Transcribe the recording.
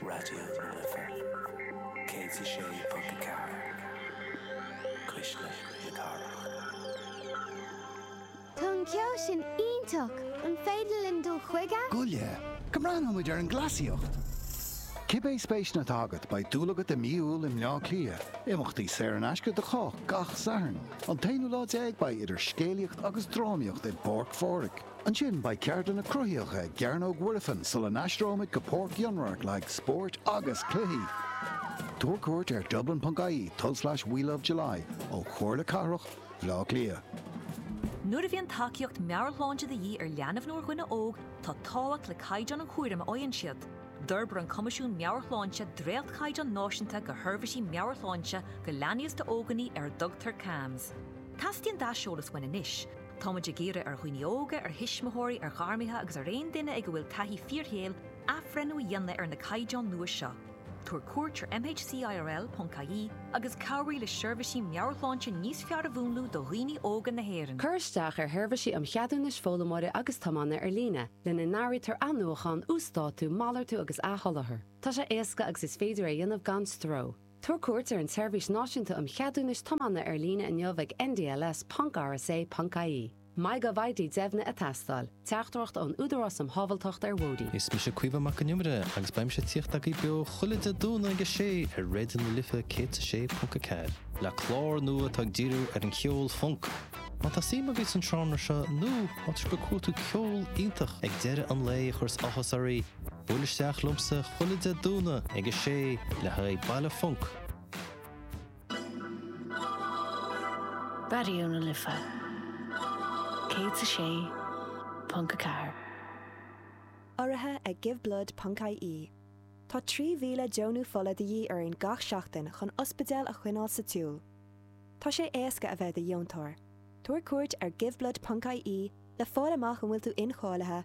Raidió na Life 106.4 Cuisle na Cathrach. Tá an ceol sin iontach! An féidir linn dul chuige? Gabh i leith go mbreathnóidh muid ar an gcleasaíocht! Cibé spéiseanna atá agat, beidh dúil agat i Mí Iúil i mBleá Cliath. Imeachtaí saor in aisce do chách gach Satharn. An t-aonú lá déag beidh idir scéalaíocht agus drámaíocht i bPáirc Phádraig. Ansin beidh ceardlanna cruthaíocha i gCearnóg Mhuirfean sula n-aistreoimid go Páirc Fhionnradhairc le haghaidh spóirt agus cluichí. Tabhair cuairt ar dublin.ie tulslais welovejuly ó Chomhairle Cathrach Bhleá Cliath. Nuair a bhíonn tacaíocht meabhairshláinte de dhíth ar leanbh nó ar dhuine óg, tá tábhacht le caighdeán an chúraim a fhaigheann siad. D'fhorbair an Coimisiún Meabhairshláinte dréachtchaighdeán náisiúnta do sheirbhísí meabhairshláinte do leanaí is d'ógánaigh ar a dtugtar CAMHS. Teastaíonn d'aiseolas uainn anois Táimid ag iarraidh ar dhaoine óga, ar thuismitheoirí, ar ghairmithe agus ar aon duine ag a bhfuil taithí fíorshaoil athbhreithniú a dhéanamh ar na caighdeáin nua seo. Tabhair cuairt ar mhcirl.ie agus cabhraigh le seirbhísí meabhairshláinte níos fearr a mhúnlú do dhaoine óga na hÉireann. Cuir isteach ar Sheirbhísí um Cheadúnais Foghlaimeora agus Tiomána ar líne, lena n-áirítear athnuachán, uasdátú, malartú agus athsholáthar. Tá sé éasca agus is féidir é a dhéanamh gan stró. Tabhair cuairt ar an tSeirbhís Náisiúnta um Cheadúnais Tiomána ar líne inniu ag ndls ponc rsa ponc ie MyGovID deimhnithe ag teastáil. Teachtaireacht ón Údarás um Shábháilteacht ar Bhóithre. Is mise Caomhán Mac an Iomaire agus beidh mise ag tíocht agaibh beo chuile Dé Domhnaigh ag 6 ar Raidió na Life 106.4, le clár nua atá ag díriú ar an cheol funk. Má tá suim agaibh san seánra seo nó má tá sibh ag cuartú ceol iontach ag deireadh an lae a chuireas áthas oraibh, Buail isteach liomsa chuile Dé Domhnaigh ag a sé le haghaidh Baile Funk! Raidió na Life 106.4. Urraithe ag Give Blood ponc IE, Tá 3,000 deonú fola de dhíth orainn gach seachtain chun ospidéil a choinneáil sa tsiúl. Tá sé éasca a bheith i do dheontóir. Tabhair cuairt ar GiveBlood ponc IE le fáil amach an bhfuil tú incháilithe,